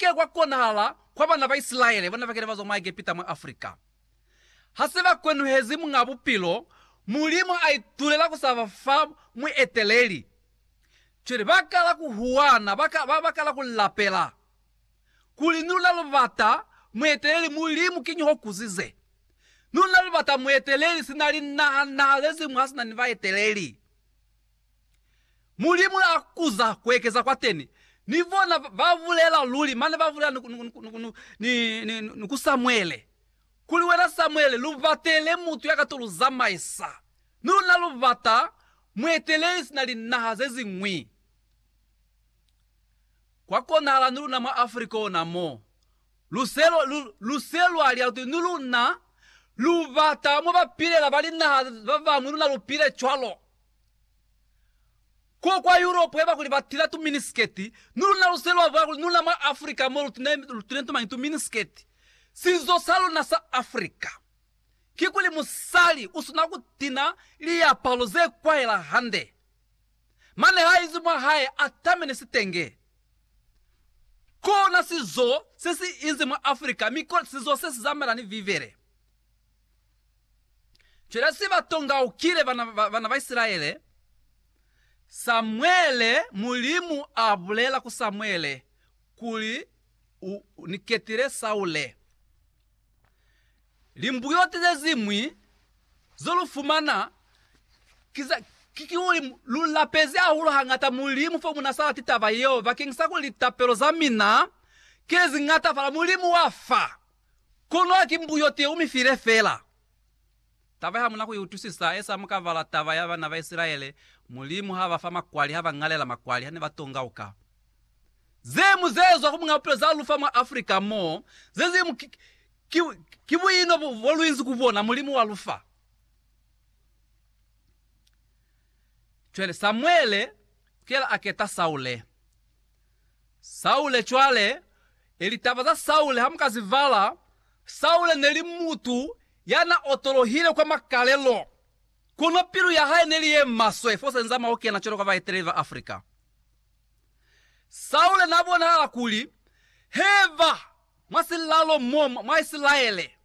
ke kwa konahala kwa bana ba Isilaele bana ba kile ba zwa mwa Egepita mwa Afrika. Ha se ba kwenuhezi Muñ'a Bupilo, Mulimu a itulela ku sa ba fa mueteleli. Cwale ba kala ku huwana, ba ka, ba, ba kala ku lapela, kuli, Ni luna lu bata mueteleli, Mulimu, kiñi ho kuzize? Ni luna lu bata mueteleli, sina linaha naha ze ziñwi ha si na ni baeteleli. Mulimu la kuza kuekeza kwateni, ni bona babulela luli, mane babulela ni ku Samuele, kuli, Wena Samuele, lubatele mutu ya ka to lu zamaisa, mi luna lubata mueteleli sina linaha zeziñwi. Kwa konahala ni luna mwa Africa ona mo, luse lwa lia kuti, Ni luna lubata mo bapilela ba linaha babañwi, luna lupile cwalo. Ko kwa Europe eba kuli ba tila tu miniskirt, ni luna lu se lwa vwala kuli ni luna mwa Africa mo lu tine, lu tine tu mañi tu miniskirt. Sizo sa luna sa Africa kikuli musali u sina ku tina liapalo ze kwahela hande, mane ha izi mwa hae a tamene sitenge. Kona sizo se si inzi mwa Africa, mi kona sizo se si zamaela ni Bibele. Cwela se ba tongaukile bana ba Isilaele. Samuele, Mulimu a bulela ku Samuele kuli, U ni ketile Saule. Limbuyoti ze ziñwi zo lu fumana ki kuli, Lu lapezi hahulu hañata Mulimu fo mu na sa lati taba yeo, bakeñisa kuli litapelo za mina ki le zi ñatafala. Mulimu wa fa. Kono haki mbuyo teo mi file fela. Taba ye hamuna ku i utwisisa, esa mukavala taba ya bana ba Isilaele, Mulimu ha ba fa makwali, ha ba ñalela makwali ha ne ba tongauka. Ze mu ze zwa ku muñ'a bupilo za lu fa mwa Africa mo, ze zimu ki, ki, ki buino bo, bo lu inzi ku bona, Mulimu wa lu fa. Cwale Samuele kuyela a keta Saule. Saule cwale, e litaba za Saule ha mu ka zi bala, Saule ne li mutu ya na otolohile kwa makalelo, kono pilu ya hae ne li ye maswe fo senza mwa ku kena cwalo ka baeteleli ba Afrika. Saule na bonahala kuli heba mwa silalo mo mwa Isilaele.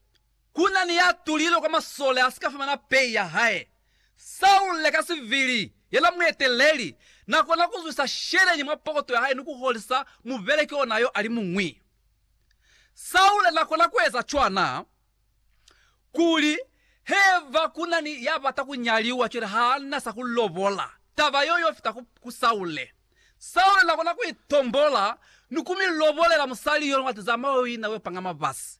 Ku na ni ya tulilwe kwa masole a si ka fumana pei ya hae. Saule ka sivili, ye na mueteleli, na kona ku zwisa sheleñi mwa pokoto ya hae ni ku holisa mubeleki ona yo a li muñwi. Saule na kona ku eza cwana kuli haiba ku na ni ya bata ku nyaliwa cwale ha na sa ku lobola, taba yeo yo fita ku Saule. Saule na kona ku itombola ni ku mi lobolela musali yo ni wa tizama yo ina yo panga mabasi.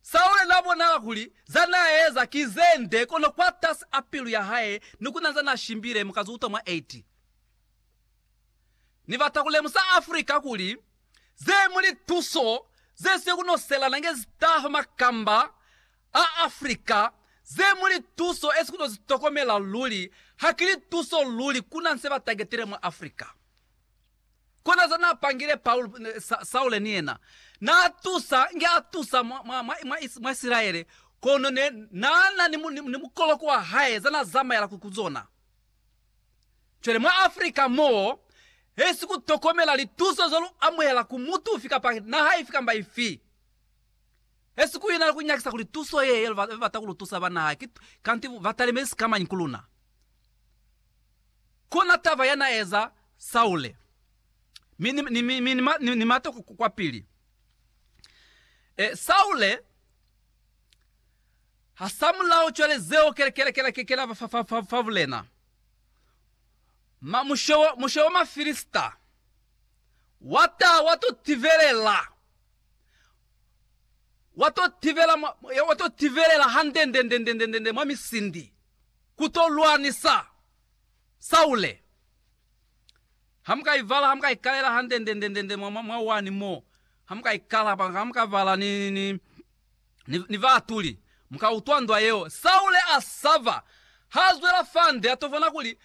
Saule n'a bonala kuli za n'a eza ki ze nde, kono kwatasi a pilu ya hae ni ku na za n'a shimbile mu ka z'u utwa mwa 8. Ni bata ku lemusa Africa kuli ze mu lituso ze si ku noselana nge zi taha makamba a Africa, ze mu lituso e si ku no zi tokomela luli, ha ki lituso luli ku na se ba tagetile mwa Africa. Kona za na pangile Paul, Saule ni yena na tusa nge a tusa mwa, mwa, mwa, mwa, is, mwa Isilaele, kono ne na na ni, ni, ni mukoloko wa hae za na zamaela ku, ku zona. Cwale mwa Afrika mo, hesi ku tokomela lituso ze lu amuhela ku mutu ufi kapa naha ifi kamba ifi. Hesi ku ina ku nyakisa kuli tuso ye, ye ba bata ku lu tusa ba naha ki, kanti ba talimezi sikamañi ku luna. Kona taba ya na eza Saule. Mi ni, mi, mi, ni, ni, ni mate kwa pili. E, Saule ha sa mulao cwale zeo kela, kela, kela, kela fa, fa, fa, fa bulena. Ma, mushe, wa, mushe wa Mafilista wa ta wa to tivelela wa to tivela wa to tivelela hande nde nde nde nde nde mwa misindi Ku to lwanisa Saule. Ha mu ka ivala, ha mu ka ikalela handendendendende mwa, mwa wani mo, ha mu ka ikala, hapa, ha mu ka vala ni, ni, ni, ni, ni baatuli, mu ka utwa ndwa yeo. Saule a saba. Ha zwela fande, a to bona kuli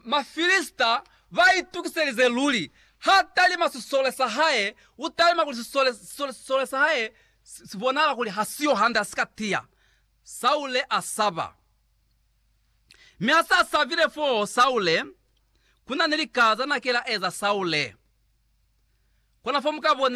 Mafilista ba itukiselize luli. Ha talima sisole sa hae, u talima kuli sisole, sisole, sisole sa hae si, si bonahala kuli ha siyo hande, ha si ka tiya. Saule a saba. Mi ha sa sabile fo Saule, ku na ni lika za na kela eza Saule. Kona fo mu ka bona